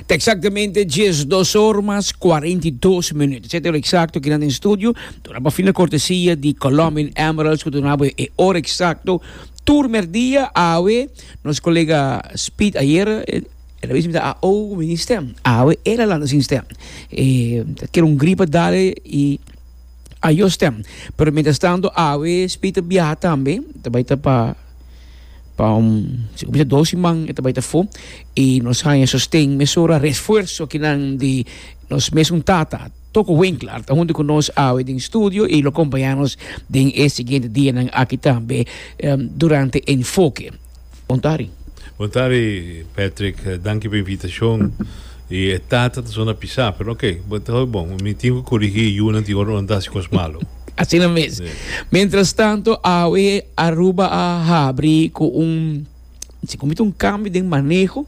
Ta exactamente 12 horas más 42 minutos. Zet el exacto que en estudio. Tuna pa fina cortesía de Colombian Emeralds, que tuna pa e hora exacto. Turmer dia awe, nos colega Speed ayer, el a visita a o mini stem. Awe el a landa sin stem. E, quiero un gripa dale y a yo stem. Pero mientras tanto, awe Speed a biaha tambe, ta bai ta pa Pa un si kumsa dos siman e ta bai ta fo i nos haña sosten mesora resfuerso ki nan di nos mesun tata toko Winkler ta huntu ku nos awe den studio i lo kompañá nos den e siguiente dianan aki tambe durante Enfoke. Bon tardi. Bon tardi Patrick, danki pa invitashon. I e tata ta sona pisá, pero oke bo ta hopi bon. Mi tin ku korigí yunan tin ora nan ta hasi kos malu. Asina mes. Mientras tanto awe Aruba a habri cu un si comita un cambio den maneho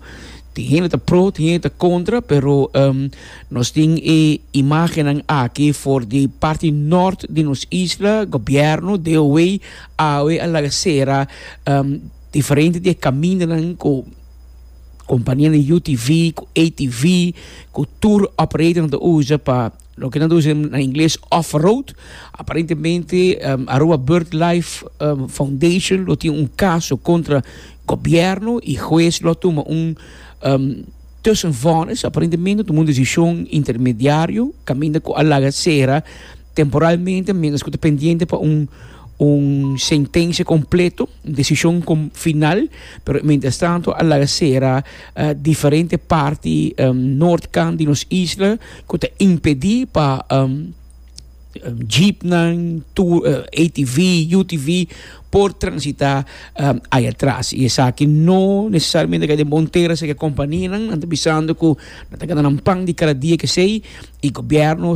tin hende ta pro tin hende ta contra pero um, nos tin e imagennan aki for di parti nort di nos isla gobierno de away awe a laga cera um, diferente di e camindanan cu companianan UTV cu ATV cu tour operatornan ta usa pa loke nan traduci na ingles off-road, aparentemente Aruba BirdLife Foundation lo tin un caso contra gobierno y huez lo a tuma un tussenvonnis, aparentemente lo tuma un decision intermediario caminda cu a laga cera temporalmente mientras cu ta pendiente pa un un sentencia completo, un decision final, pero mientras tanto a laga cera. uh, diferente parti um, noord kant di nos isla ku ta impedí pa um, um, jeepnan, tour, uh, eh, ATV, UTV por transita um, ay atrás. Y esaki no necesariamente que de Montera se que compañía nan, nan bisando ku nan ta ganan pan di cada día que sei y gobierno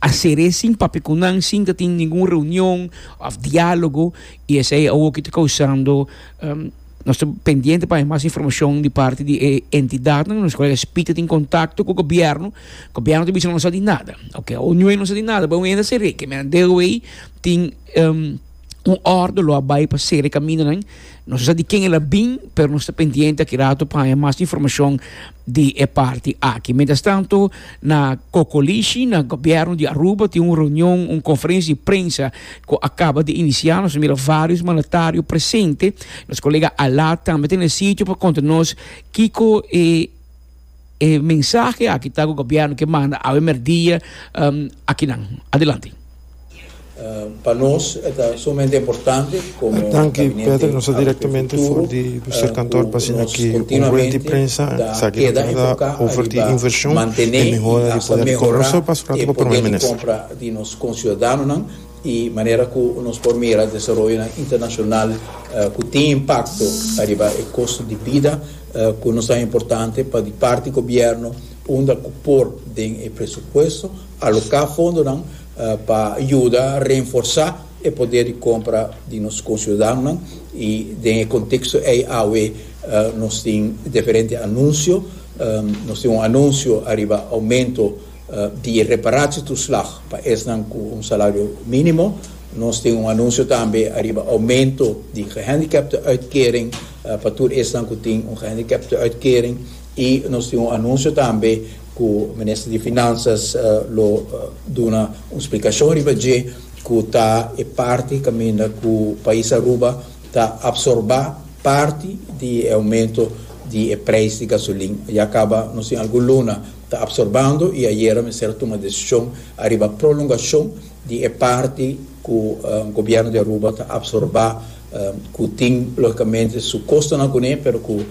hacer sin papikunan sin ta tin ningún reunión of diálogo y ese é algo que está causando um, Nos ta pendiente pa haña mas informacion di parti di e entidadnan di nos colega SPIT ta tin contacto cu gobierno, gobierno ta bisa no sa di nada, ok o nue no sa di nada bo mester cere que men deu ey tin un orde lo a bay pa cere camindonan no sa di ken el a bin pero nos ta pendiente aki rato pa haña mas informacion di e parti aki. Mientras tanto na Cocolishi na gobierno di Aruba tin un reunion un conferencia di prensa cu a caba di inicia. Nos a mira varios mandatario presente. Nos colega Alaa tambe ta na sitio pa conta nos kico e e mensahe aki ta cu gobierno ke manda awe merdia akinan. Adelante. Pa nos e ta sumamente importante como gabinete agrocurticulturo cu nos continuamente ta keda enfoca riba mantene y hasta mehora e poder di compra. di nos conciudadanonan y manera cu nos por mira desaroyonan internacional cu tin impacto ariba e costo di bida cu no tan importante pa di parti gobierno unda cu por den e presupuesto aloca fondonan pa yuda reenforsa e poder di compra di nos conciudadanonan y den e contexto ey awe nos tin diferente anuncio nos tin un anuncio ariba aumento di reparatietoeslag pa esnan cu un salario minimo. Nos tin un anuncio tambe ariba aumento di gehandicaptenuitkering pa tur esnan cu tin un gehandicaptenuitkering y nos tin un anuncio tambe cu Minister di Finanzas lo duna un splicacion riba dje cu ta e parti caminda cu pais Aruba ta absorba parti di e aumento di e prijs di gasolin. Ya caba nos tin algun luna ta absorbando y ayera mester a tuma decision ariba prolongacion di e parti cu Gobierno di Aruba ta absorba cu tin logicamente su costonan cune pero cu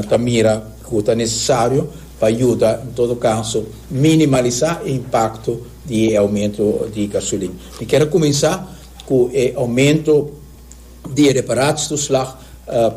ta mira cu ta necesario pa yuda en todo caso minimaliza e impacto di e aumento di gasolin. Mi kier a cuminsa cu e aumento di e reparatie-toeslag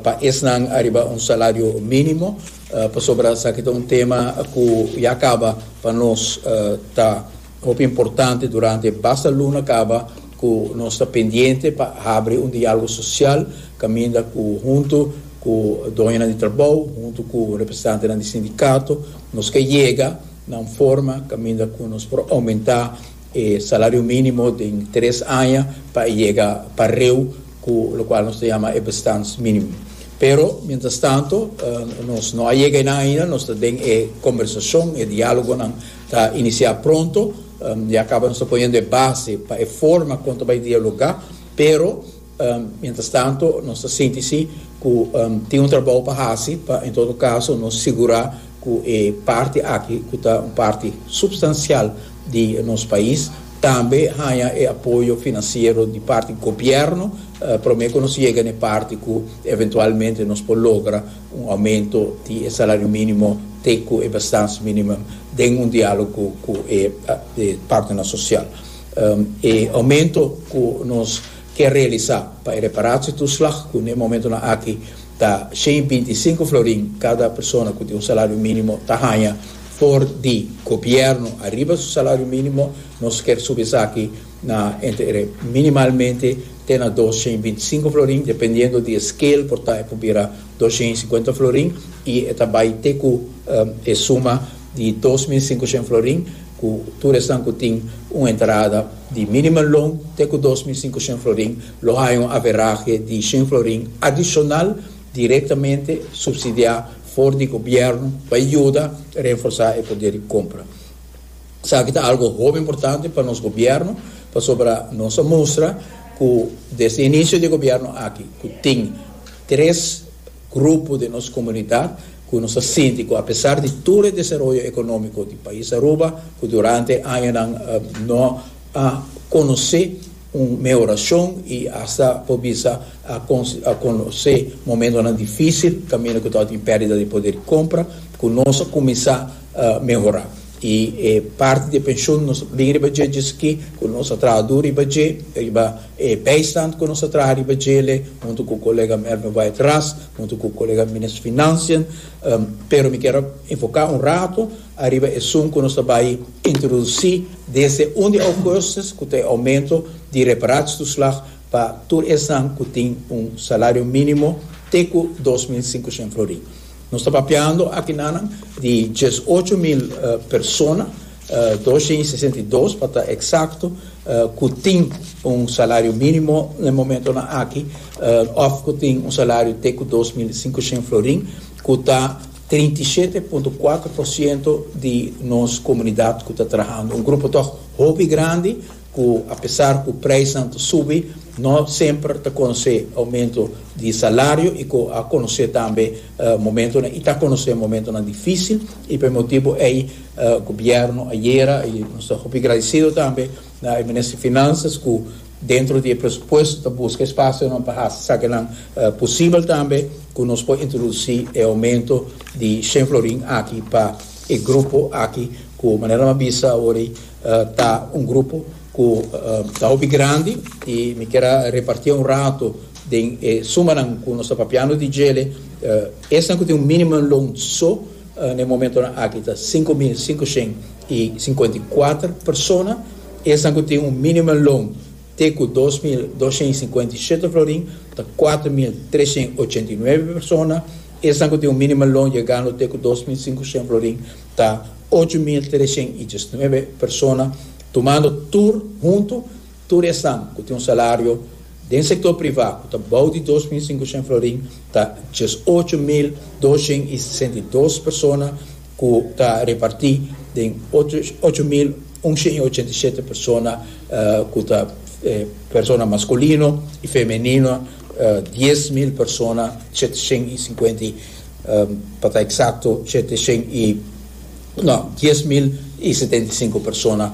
pa esnan ariba un salario minimo. Pasobra esaki ta un tema ku ya kaba pa nos ta hopi importante durante e basta luna kaba ku nos ta pendiente pa habri un dialogo sosial kaminda ku huntu ku doñonan di trabou, huntu ku representantenan di sindikato nos ke yega na un forma kaminda ku nos por oumentá e salario minimo den tres aña pa e yega pareu cu locual nos ta yama e bestands minimo. Pero, mientras tanto, nos no a yega enan ainda, nos ta den e conversacion, e dialogonan ta inicia pronto, ya caba nos ta poniendo e base pa e forma con ta bay dialoga, pero, Mientras tanto nos ta sinti si cu tin un trabao pa haci pa en todo caso nos sigura cu e parti aki cu ta un parti substancial di nos pais tambe haya e apoyo financiero di parti gobierno prome cu nos yega na e parti cu eventualmente nos por logra un aumento di e salario minimo te cu e bestans minimum den un dialogo cu e partenan social. E aumento cu nos. ke realisá pa e reparatietoeslag ku n'e momentunan aki ta shen binti i sinku florin kada persona ku tin un salario mínimo ta haña for di gobièrnu ariba su salario mínimo. Nos kier subi esaki na entre minimalmente te na dos shen binti i sinku florin, dependiendo di e scale por ta e por bira dos shen i sikuenta florin i e ta bai te ku e suma di dos mil singushen florin ku tur esnan ku tin un entrada di minimum loan te ku dos mil singushen florin lo haña un averahe di shen florin adishonal direktamente supsidiá for di gobièrnu pa yuda renforsá e poder di kompra. Esaki ta algu hopi importante pa nos gobièrnu pasobra nos a mustra ku desde inicio di e gobièrnu aki ku tin tres Grupo den nos komunidat ku nos a sinti ku apesar di tur e desaroyo ekonómiko di pais Aruba ku durante e añanan no a konosé un mehorashon i asta por bisa a konosé momentonan difísil kaminda ku ta tin pèrdida di poder di kompra ku nos a kuminsá mehorá i e parti di e penshon nos bin riba dje dje esaki ku nos a traha dur riba dje riba E bijstand ku nos a traha riba dje le huntu ku koleganan Erwin Wyatt Ras, huntu ku koleganan Minister Financian, pero mi kier a enfoka un rato ariba e sum ku nos ta bai introdusi desde un di Augustus ku ta e oumento di reparatietuslag pa tur esnan ku tin un salario minimo te ku dos mil sinkoshen florin. Nos ta papiando akinanan di diesocho mil persona. Dos hende i sesenta i dos, pa ta eksakto, ku tin un salario mínimo na e momentonan aki òf ku tin un salario te ku dos mil i sinku shen florin, ku ta trinta i shete punto kuater por siento di nos komunidat ku ta trahando. Un grupo tòg hopi grandi ku apesar ku preisnan ta subi no semper ta konosé oumento di salario i ku a konosé tambe momentonan i ta konosé momentonan difísil i pa e motibu ei Gobierno ayera y nos ta hopi gradecido tambe na e Minister Finanzas cu dentro di e presupuesto ta busca espacionan pa haci sakinan posibel tambe cu nos por introduci e aumento di shen florin aki pa e grupo aki cu manera mi a bisa awor ta un grupo cu ta hopi grandi y mi kier a repartia un rato den e sumanan cu nos ta papiando di djele esnan cu tin un minimum loan so Na e momentonan aki ta sinku mil sinku shen i sinkuenta i kuater persona, esnan ku tin un minimum loan te ku dos mil dos shen i sinkuenta i shete florin ta kuater mil tres shen i ochenta i nuebe persona, esnan ku tin un minimum loan yegando te ku dos mil sinku shen florin ta ocho mil tres shen i diesnuebe persona, tumando tur huntu Tur esnan ku tin un salario den sektor privá ku ta bou di dos mil sinkushen florin ta dies ocho mil doshent i sesenta i dos persona ku ta repartí den ocho mil unshent i ochenta i shete persona ku ta persona maskulino i femenino dies mil persona sheteshent i sinkuenta i pa ta eksakto sheteshent i no dies mil i setenta i sinku persona.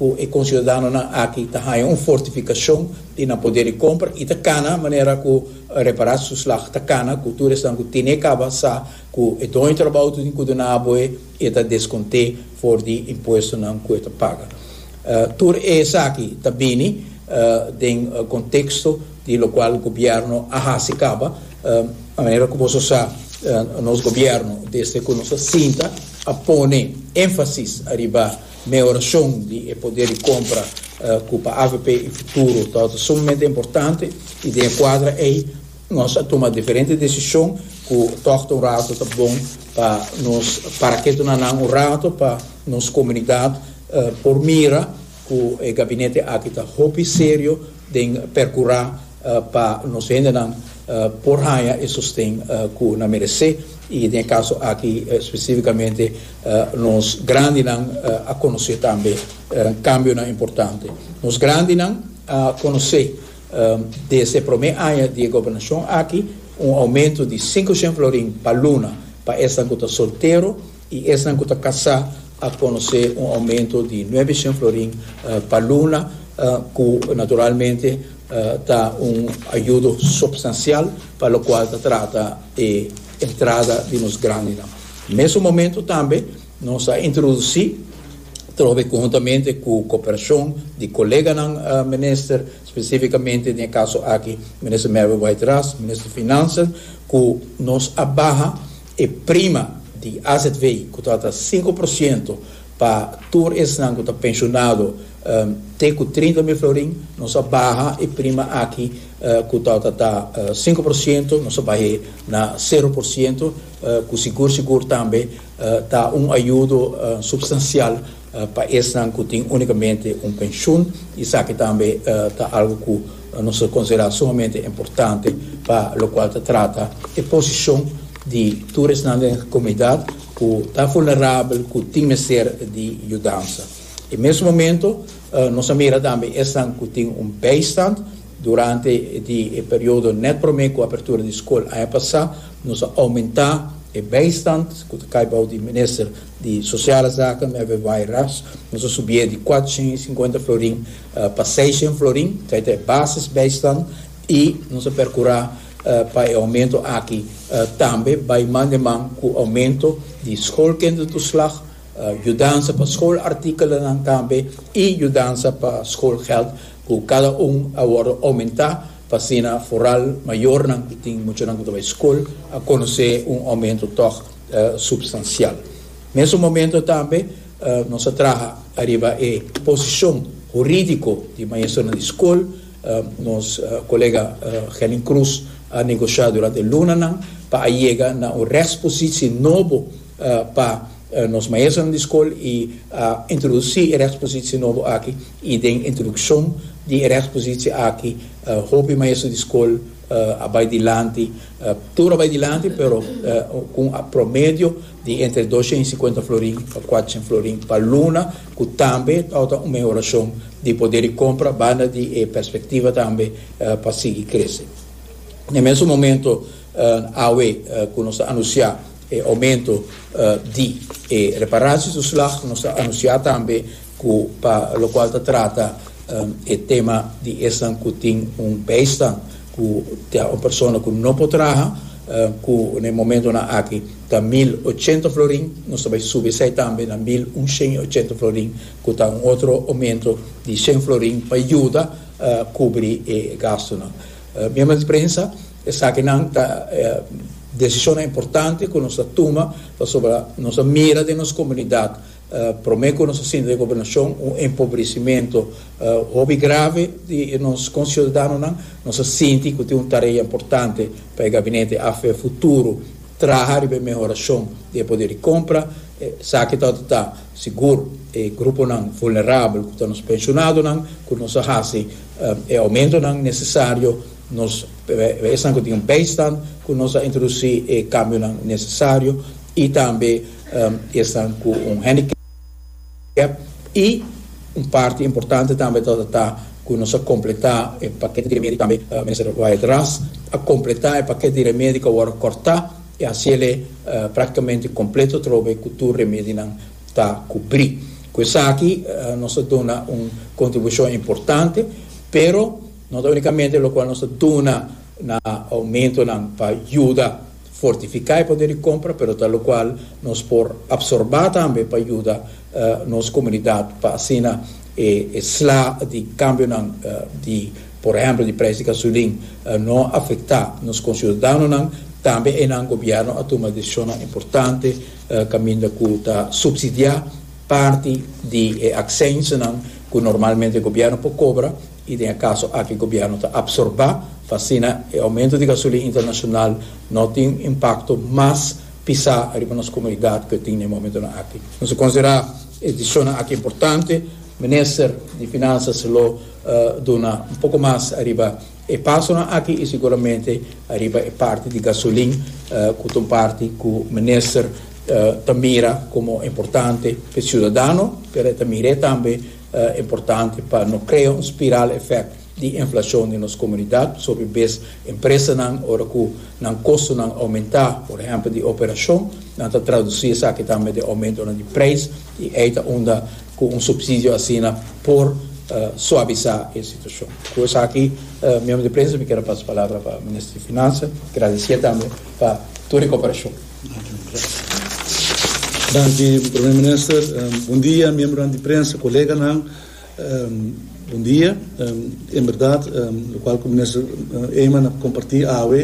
Cu e conciudadanonan aki ta haya un fortificacion di nan poder di compra y ta cana manera cu repara su slag ta cana cu tur esnan cu tine caba sa cu e doño trabao tin cu duna aboe y e ta desconte for di impuestonan cu e ta paga. Tur esaki ta bini den contexto di locual gobierno a haci caba manera cu boso sa nos gobierno desde cu nos a sinta a pone enfasis ariba Mehorashon di e poder di compra cu pa avp e futuro tabata sumamente importante y den e cuadra ey nos a tuma diferente decision cu tohta un rato ta bon pa nos para ketonanan un rato pa nos comunidad por mira cu e gabinete aki ta hopi serio den percura pa nos hendenan por haña e sosten ku nan meresé i den e kaso aki spesífikamente nos grandinan a konosé tambe kambionan importante. Nos grandinan a konosé desde e promé aña di e gobernashon aki un oumentu di sinku shen florin pa luna pa esnan ku ta soltero, y esnan cu ta casá a conoce un aumento di nuebe shen florin pa luna, cu naturalmente ta un ayudo substancial pa locual ta trata e entrada di nos grandenan. Mesun momento tambe nos a introduci, trobe conhuntamente cu cooperacion di coleganan minister, specificamente den e caso aki Minister Mary White Ras, Minister Finanzas, cu nos a baha, E prima di azv ku trata sinku por siento pa tur esnan ku ta penshonado te ku trinta mil florin, nos a baha e prima aki ku trata ta sinku por siento, nos a bah'e na sero por siento, ku sigur sigur tambe ta un ayudo supstansial. Pa esnan cu tin unicamente un pensioen, esaki tambe ta algo cu nos ta considera sumamente importante, pa locual ta trata e posicion di tur esnan den comunidad cu ta vulnerabel, cu tin mester di yudansa. E mes momento nos a mira tambe esnan cu tin un bijstand. Durante di e periodo net prome cu apertura di scol aña pasa, nos a aumenta e bijstand cu ta cay bao di Minister, di Sociale Zaken en e Weiras, nos a subié di kuater shen i sinkuenta florin pa seis shen florin, kei ta e basis bijstand, i nos a perkurá pa e oumento aki tambe bai man den man ku oumento di schoolkindertoeslag, yudansa pa schoolartikelen tambe i yudansa pa schoolgeld ku kada un a wòrdu oumentá pa asina foral mayornan ku tin muchanan ku ta bai skol a konosé un oumento tòg. substancial. Mesun momento tambe nos a traha ariba e posicion juridico di maestronan di scol. Nos colega Gelin Cruz a negocia durante e lunanan pa a yega na un rechtspositie nobo pa nos maestronan di scol y a introduci e rechtspositie nobo aki y den introduccion di e rechtspositie aki hopi maestro di scol a bai dilanti, tur a bai dilanti pero cu un promedio di entre doscientos y cincuenta florin pa cuatshent florin pa luna cu tambe ta ota un mehoracion di poder di compra banda di e perspectiva tambe pa sigui crece. Na e mesun momento awe cu nos ta anuncia E oumento di e reparashontoeslag nos a anunsiá tambe ku pa lokual ta trata e tema di esnan ku tin un bèistan ku ta un persona ku no por traha, ku na e momentonan aki ta mil ochenta florin, nos ta bai subi esei tambe na mil un shen i ochenta florin ku ta un otro oumento di shen florin pa yuda kubri e gastunan. Miembronan di prensa. Esakinan ta e desishonnan importante ku nos a tuma pasobra nos a mira den nos komunidat promé ku nos a sinti den gobernashon un empobresimentu hopi grave di nos konsiudadanonan. Nos a sinti ku tin un tarea importante pa e gabinete AFP Futuro traha riba e mehorashon di e poder di kompra. Esaki ta tabata ta sigur e gruponan vulnerabel ku ta nos penshonadonan ku nos a hasi e oumentonan nesesario. Nos ta esnan ku tin un bijstand ku nos a introdusí e kambionan nesesario i tambe esnan ku un handicap. I un parti importante tambe tabata ta ku nos a kompletá e pakèt di remedi, tambe Minister Wyatt Ras a kompletá e pakèt di remedi ku a wòrdu kòrtá i a hasiel e praktikamente kompleto atrobe ku tur remedinan ta kubrí. Ku esaki nos a duna un kontribushon importante, pero. No ta unikamente lokual nos ta duna na oumentonan pa yuda fortifiká e poder di kompra, pero ta lokual nos por apsorbá tambe pa yuda nos komunidat pa asina e sla di kambionan di, por ehèmpel, di preis di gasulin no afektá nos konsiudadanonan. Tambe einan gobièrnu a tuma desishonnan importante kaminda ku ta supsidiá parti di e aksensnan ku normalmente gobièrnu por kobra, I den e kaso aki gobièrnu ta apsorbá pa asina e oumentu di gasolina internashonal no tin un impakto mas pisá riba nos komunidat ku e tin na e momentunan aki. Nos a konsiderá e disishonnan aki importante. Minister di Finansas lo duna un poko mas riba e pasonan aki i seguramente riba e parti di gasolina ku ta un parti ku Minister ta mira komo importante pa e siudadano pero e ta mir'é tambe importante pa no krea un spiral efect di inflacion den nos comunidad, sobi bes empresanan ora cu nan costonan aumenta, por ehempel di operacion, nan ta traduci esaki tambe den aumentonan di prijs y ey ta unda cu un subsidio asina por suabiza e situacion. Cu esaki, miembro di prensa, mi kier a pasa palabra pa Minister di Finansa, gradicié tambe pa tur e cooperacion. Danki Prome Minister, bon dia miembronan di prensa, koleganan, bon dia. En berdad lokual ku Minister Eman a kompartí awe,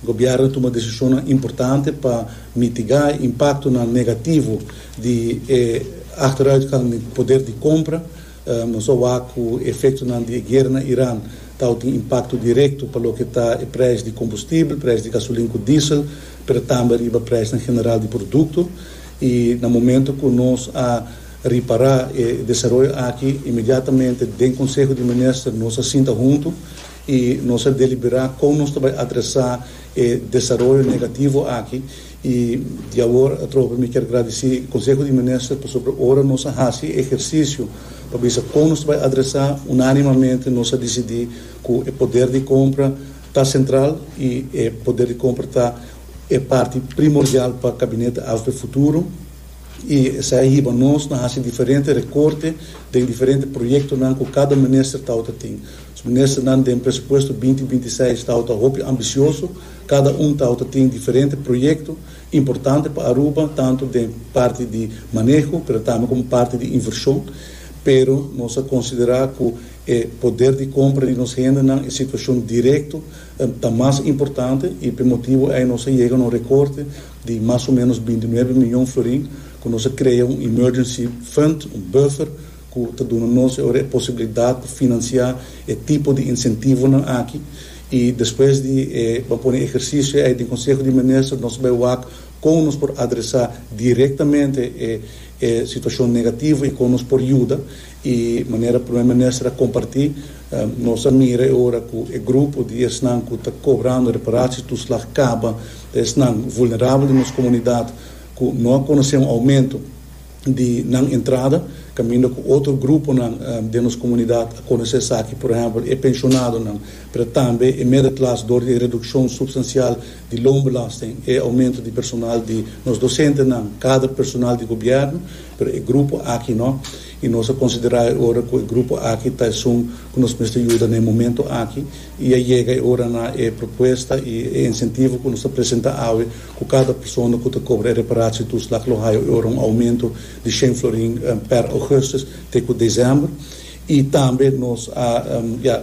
Gobièrnu a tuma desishonnan importante pa mitigá e impaktonan negativo di e ahteruitgang den poder di kompra, Nos a wak ku efektonan di e guera na Iran ta outi un impakto direkto pa loke ta e presh di kombustibel, presh di gasolin ku diesel, pero tambe riba preshnan general di produkto. I na momento ku nos a ripará e desaroyo aki, inmediatamente den konseho di minister nos a sinta huntu i nos a deliberá kon nos ta bai adresá e desaroyo negativo aki I di awor atrobe mi kier gradici Conseho di Minister pasobra ora nos a haci e ehercicio pa bisa con nos ta bay adresa, unanimamente nos a dicidi cu e poder di compra ta central y e poder di compra ta e parti primordial pa Gabinete AFP futuro y esai a hiba nos na haci diferente recorte den diferente proyectonan cu cada Minister tawata tin. Nos Ministernan den presupuesto binti binti seis tawata hopi ambicioso. Kada un tawta tin diferente proyekto importante pa Aruba, tantu den parti di maneho pero tambe komo parti di invershon. Pero nos a konsiderá ku e poder di kompra di nos hendenan, e situashon direkto ta mas importante i p'e motibu ei nos a yega na un rekorte di mas o ménos binti nuebe miyon florin ku nos a krea un emergency fund, un buffer, cu ta duna nos e ora e posibilidad pa financia e tipo di incentivonan aki y despues di e ban pone e ehercicio ey den Conseho di Minister nos bay wak con nos por adresa directamente e e situacion negativo y con nos por yuda y manera Primer Minister a comparti nos a mira e ora cu e grupo di esnan cu ta cobrando reparatie toeslag caba ta esnan vulnerabel den nos comunidad cu no a conoce un aumento. di nan entrada, kaminda ku otro gruponan den nos komunidat a konosé esaki, por ehèmpel e penshonadonan, pero tambe e medeklas dor di e redukshon supstansial di loonbelasting, e oumentu di personal di nos dosentenan, kader personal di gobièrnu, pero e grupo aki no, i nos a konsiderá e ora ku e grupo aki ta esun ku nos mester yuda na e momentu aki. y a yega e ora na e propuesta y e incentivo cu nos ta presenta awe cu cada persona cu ta cobra e reparacion tur slag lo haya e ora un aumento di shen florin per augustus te cu december y tambe nos a ya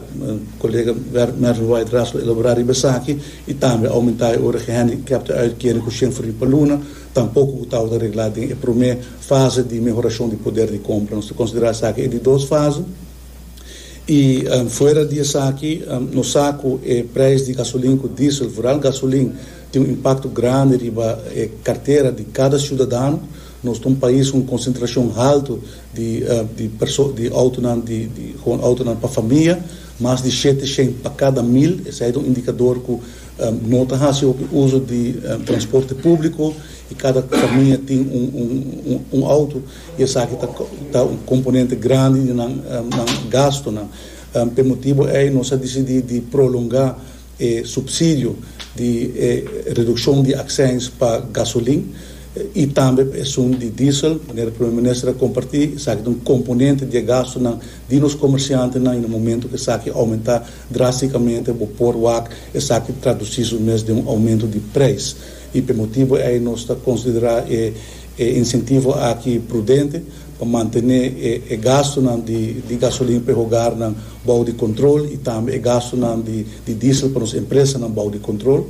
colega Mervin White Ras lo elabora riba esaki y tambe a aumenta e ora gehandicap te uitkering cu shen florin pa luna tampoco cu tabata regla den e prome fase di mehoracion di poder di compra nos ta considera esaki e di dos fase. I fuera di esaki nos sa ku e preis di gasolin ku diesel, vooral gasolin, tin un impakto grandi riba e kartera di kada siudadano. Nos ta un pais ku un konsentrashon haltu di di perso di outonan di di hon outonan pa famia, mas di shete shen pa kada mil. Esei ta un indikador ku no ta hasi hopi uso di transporte públiko i kada famia tin un un un outo. y esaki ta un componente grandi di nan gastonan. P'e motibo ey nos a dicidi di prolonga e subsidio di e reduccion di accins pa gasolin y tambe pa esun di diesel, manera Primer Minister a comparti, esaki ta un componente di e gastonan di nos comerciantenan y na momento cu esaki aumenta drasticamente bo por wak esaki traduci su mes den un aumento di prijs y p'e motibo ey nos ta considera e E insentivo aki prudente pa mantene e gastunan di gasolin pa e hogarnan bou di control y tambe e gastunan di diesel pa nos empresanan bou di control.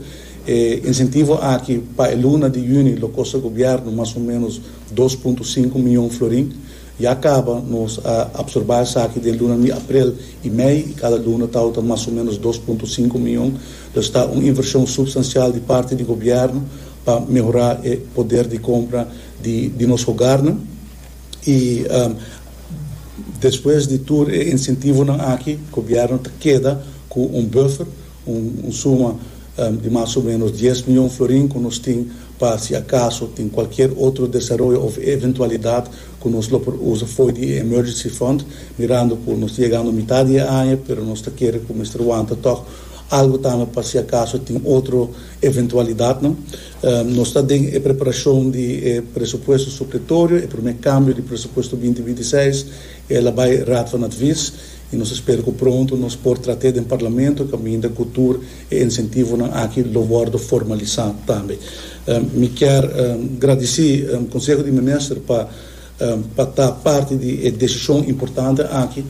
E insentivo aki pa e luna di juni lo costa gobierno mas o menos dos punto sinku miyon florin. Ya caba nos a absorba esaki den lunan di aprel y mei y cada luna tawata mas o menos dos punto sinku miyon. Lo esta un inversion substancial di parti di gobierno. pa mehorá e poder di compra di nos hogarnan y despues di tur e incentivonan aki gobierno ta keda cu un buffer, un suma di mas o menos dies miyon florin cu nos tin pa si acaso tin cualkier otro desaroyo of eventualidad cu nos lo por usa fo'i di e emergency fund mirando cu nos ta yegando mitad di e aña pero nos ta kere cu mester wanta tog algo tambe pa si acaso tin otro eventualidatnan. Nos ta den e preparashon di e presupuesto supletorio, e promé kambio di presupuesto binti binti seis, i el a bai Raad van Advies, i nos ta spera ku pronto nos por trat'é den Parlamento kaminda ku tur e insentivonan aki lo wòrdu formalisá tambe. Mi kier gradisí Konseho di Minister pa pa ta parti di e desishon importante aki.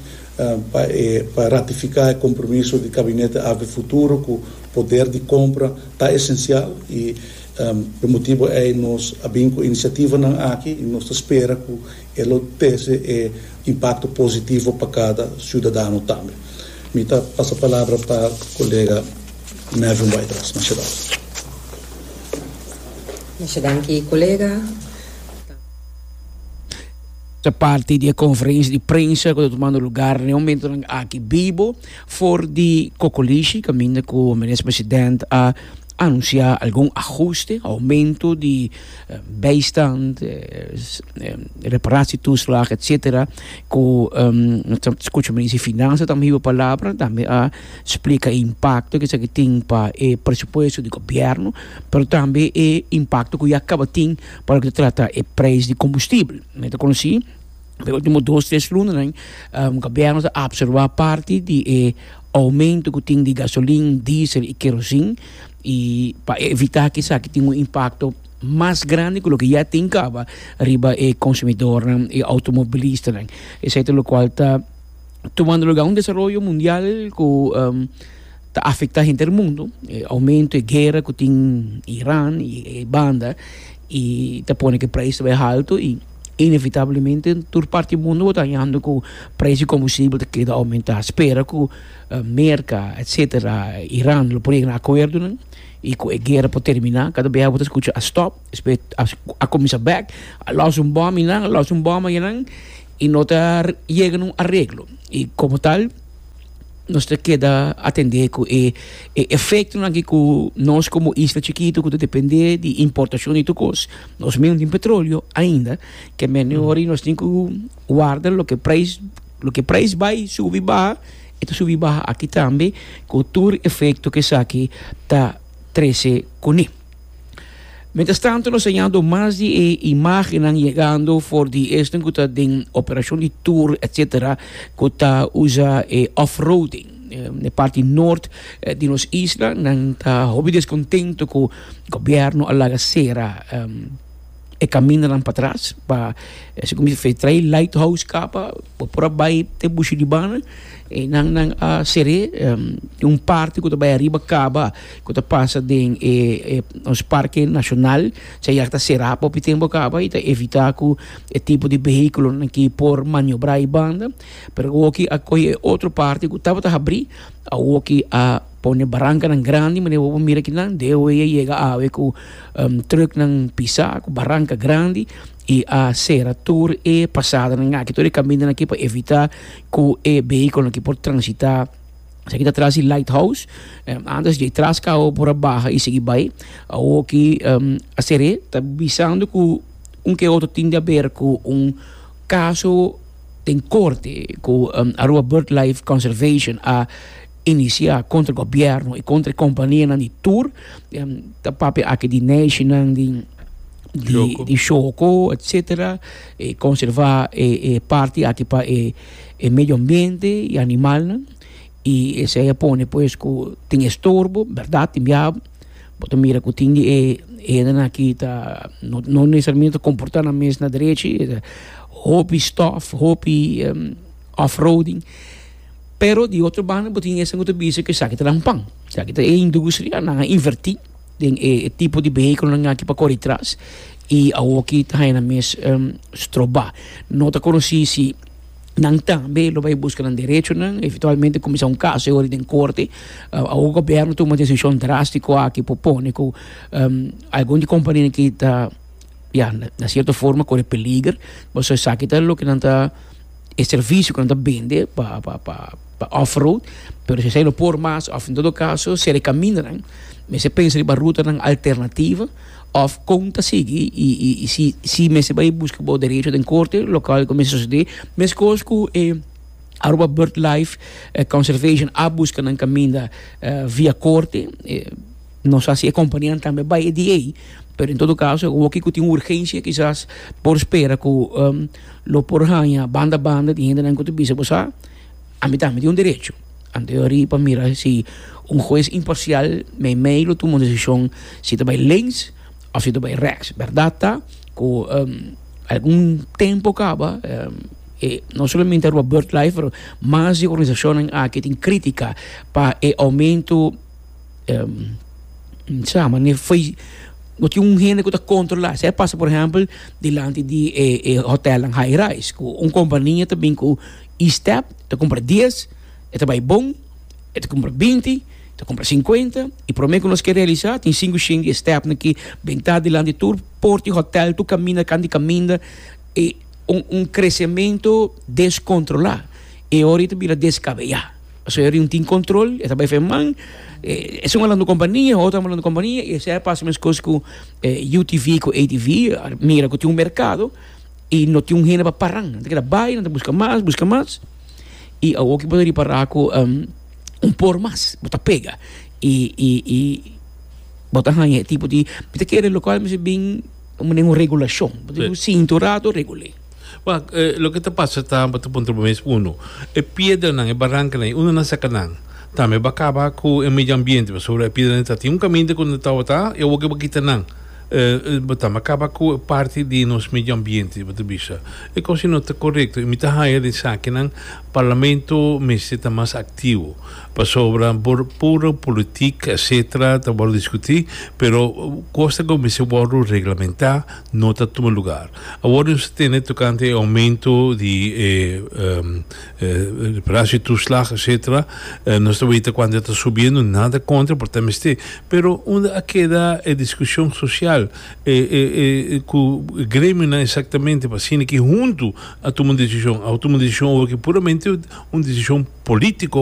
pa e pa ratifiká e kompromiso di Kabinete Abe futuro ku poder di kompra ta esensial i p'e motibu ei nos a bin ku inisiativanan aki i nos ta spera ku e lo trese e impakto positivo pa kada siudadano tambe. Mi ta pasa palabra pa kolega Melvin Whitehouse. Masha danki. Masha danki kolega. Ta parti di e konferensia di prensa ku ta tumando lugar na e momentunan aki bibo for di kokolishi kaminda ku Minis President a anunsiá algun ahuste, oumentu di bijstand, reparasietuslag etsetera ku nos ta skucha Minister di Finansa tambe hiba palabra tambe a splika e impakto ku esaki tin pa e presupuesto di gobièrnu pero tambe e impakto ku ya kaba tin. Pa loke ta trata e prijs di kombustibel, mi ta konosí den e último dos tres lunanan gobièrnu ta apsorbá parti di e oumentu ku tin di gasolin, diesel i kerosin i pa evitá ku esaki tin un impakto mas grandi ku loke ya tin kaba riba e konsumidornan, e outomobilistanan. Esei ta lokual ta tumando lugá un desaroyo mundial ku. ta afecta henter e mundo e aumento e guera cu tin Iran y e banda y ta pone cu e prijs ta bay halto y inevitablemente tur parti e mundo bo ta hañando cu prijs di combustible ta keda aumenta spera cu Merca etcetera Iran lo por yega na acuerdonan y cu e guera por termina cada bes abo ta scucha a stop despues a cuminsa back a los un bom y nan a los un bom ayenan y no ta yega na un areglo y como tal nos ta keda atendé ku e efektonan ki ku nos komo isla chikitu ku ta dependé di importashon di tur kos, nos min no tin petroleo ainda, ke mene ora nos tin ku warda loke preis, loke preis bai subi baha e ta subi baha aki tambe ku tur efekto ku esaki ta trese kuné. Mientras tanto nos hallando más di e imágenan llegando for di este que está den operación de tour, etcétera, que está usa e off-roading. de eh, parte norte eh, de nos isla, nan está hobby descontento que gobierno a laga cera um, e camino para atrás, para, eh, se como dice, trae lighthouse capa, Bo por a bai te bushi di bana, einan nan a ser'é un parti ku ta bai ariba kaba ku ta pasa den e nos parke nashonal, esei ya ta será pa hopi tempu kaba i ta evitá ku e tipo di behikulonan ki por maniobrá i banda, pero awoki a kohe e otro parti ku tabata habrí, awoki a pone barankanan grandi manera bo por mira aki nan, deo ei a yega awe ku trùknan pisá ku baranka grandi. i a sera tur e pasadernan aki, tur e kamindanan aki pa evitá ku e behikulonan aki por transitá. Esaki ta tras di Lighthouse. Antes dje tras kau por a baha i sigui bai. Awoki a ser'é ta bisando ku un ke otro tin di aber ku un kaso den korte ku Aruba Birdlife Conservation a inisiá kontra gobièrnu i kontra e kompanianan di tur ta papia aki di nèshi nan di. di shoko etcetera e conserva e e parti aki pa e e medio ambiente y animalnan y esey a pone pues cu tin estorbo berdad tin bia bo ta mira cu tin di e edennan aki ta no no necesariamente ta comporta nan mes na derechi hopi stof hopi offroading pero di otro banda bo tin esnan cu ta bisa cu esaki ta dal pan esaki ta e industria nan a inverti. den e tipo di beheculonan aki pa cori tras y awoki ta haña nan mes stroba. No ta conoci si nan tambe lo bay busca nan derechonan, eventualmente cuminsa un caso e ho'ri den corte. Awo gobierno tuma decision drastico aki pa pone cu algun di compania aki ta, ya, na cierto forma cori peliger, pasobra esaki ta loke nan ta. e servicio cu nan ta bende pa off road pero si esai no por mas of en todo caso ser e caminanan mester pensa riba rutanan alternativo of con ta sigui y si si mester bay busca bo derecho den corte local cu mester sucede mescos cu e Aruba bird life conservation a busca nan caminda via corte. Nos hasi e kompanianan tambe bai e dia ei, pero en todo kaso e woki ku tin urgensha kisas por spera ku lo por haña banda banda di hendenan ku ta bisa bo sa ami tambe tin un derecho anteori pa mira si un hues imparsial meimei lo tuma un desishon si ta bai lings òf si ta bai reks. Bèrdat ta ku algun tempu kaba e no solamente Aruba BirdLife pero mas di organisashonnan aki tin krítika pa e oumentu sa mane foi no tin un hende ku ta kontrolá sa e pasa por ehèmpel dilanti di e e hotèlnan high rise ku un kompania ta bin ku i stèp ta kumpra dies e ta bai bon e ta kumpra binti ta kumpra sinkuenta i promé ku nos ke realisá tin sinku shen di e stèpnan ki bin ta dilanti tur por di hotèl tur kaminda kan di kaminda e un un kresementu deskontrolá e ora i ta bira deskabeyá. Pasobra e rin tin control, e ta bay fe man. E, es un hablando compañía, otro hablando compañía, y ese pasa mes cos cu eh, UTV, cu ATV, mira cu tin un mercado, y no tin un hende pa paran. Nan ta keda bay, nan ta busca mas, busca mas, y awor ki bo ta ripara cu um, un por mas, bo ta pega. Y, y, y bo ta haya e tipo di, mi ta kere local mi si bin, un regulacion, bo ta un cinto rato regulé. Wak, eh, loke ta pasa ta, bo ta puntra bo mes, uno, e piedranan, e barancanan, e uno nan sacanan, tambe ba caba cu e medio ambiente, pasobra e piedranan ta tin un caminda cu nan tabata, y awo cu bo kita nan, eh, bo tambe a caba cu e parti di nos medio ambiente, bo ta bisa. E cosa no ta corecto, y mi ta haya den sakinan, Parlamento mester ta mas activo, pasobra por puro politic, etcetera, ta worde discuti, pero cos ta cu mester worde reglamenta, no ta tuma lugar. Awor nos a tene tokante e oumento di e reparasio toeslag etsetera, nos ta weta kuantu e ta subiendo, nada kontra por ta mester, pero unda a keda e diskushon sosial? E e ku e gremionan eksaktamente pa asina ki huntu a tuma un desishon? Abo tuma un desishon oba ki puramente un desishon polítiko?